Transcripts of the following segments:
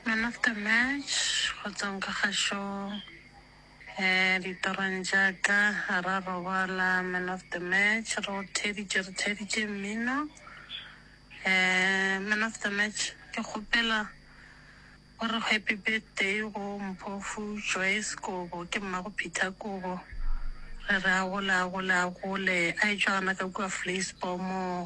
Man of the match go tswang ka kgašong um ditorong tša ka ga ra robala man of the match re o theditše re theditše mmino um man of the match ke kgopela o re happy birthday go mpofu joyce kobo ke mmago peter kobo re re a gole a gole a gole a etšwa gana ka kua vleisbor moo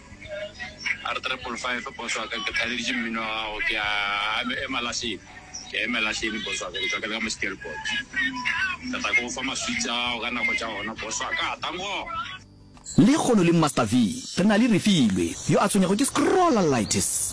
R triple five boss wa ka ke kgaleditše mmino wa gago ke a ema lahleng ke a ema lahleng boss wa ka ke tswa ke le ka mo stelpot ke tla ke go fa maswitse a gago ka nako tša gona boss wa ka tango Lehono le Master V re na le Refilwe yo a tshwenyago ke scrollalitis.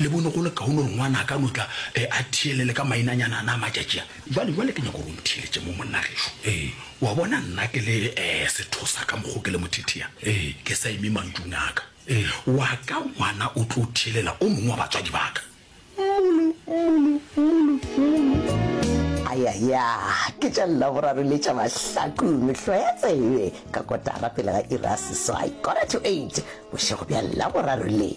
Le bone go le kaone gore ngwana a ka no tla e, a theelele ka mainanyana ana a matšatši a. Jwale, jwale ke nyaka gore o ntheeletše mo, monna gešo. Ee. O a bona, nna ke le e, sethosa ka mokgo ke le mothethea, ee, ke sa eme mantšung a ka. Ee. Wa ka ngwana o tlo theelela o mongwe wa batswadi ba ka. Mmulu, mmulu, mmulu, mmulu. Ayaya, ke tša Laboraro le tša Mahlaku, mehlo ya tsebe, ka kotara pele ga iri ya seswai, quarter to eight, bošego bja Laboraro le.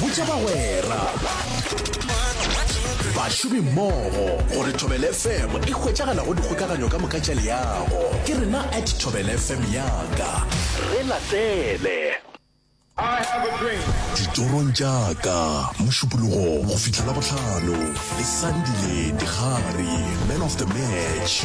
botša bagwera bašomi mmogo gore thobel fm e hwetšagala go dikgokaganyo ka moka tša leago ke rena at thobel fm yaka re latele ditorong jaaka mošupologo go fitlha labotlhano le sandile digare man of the match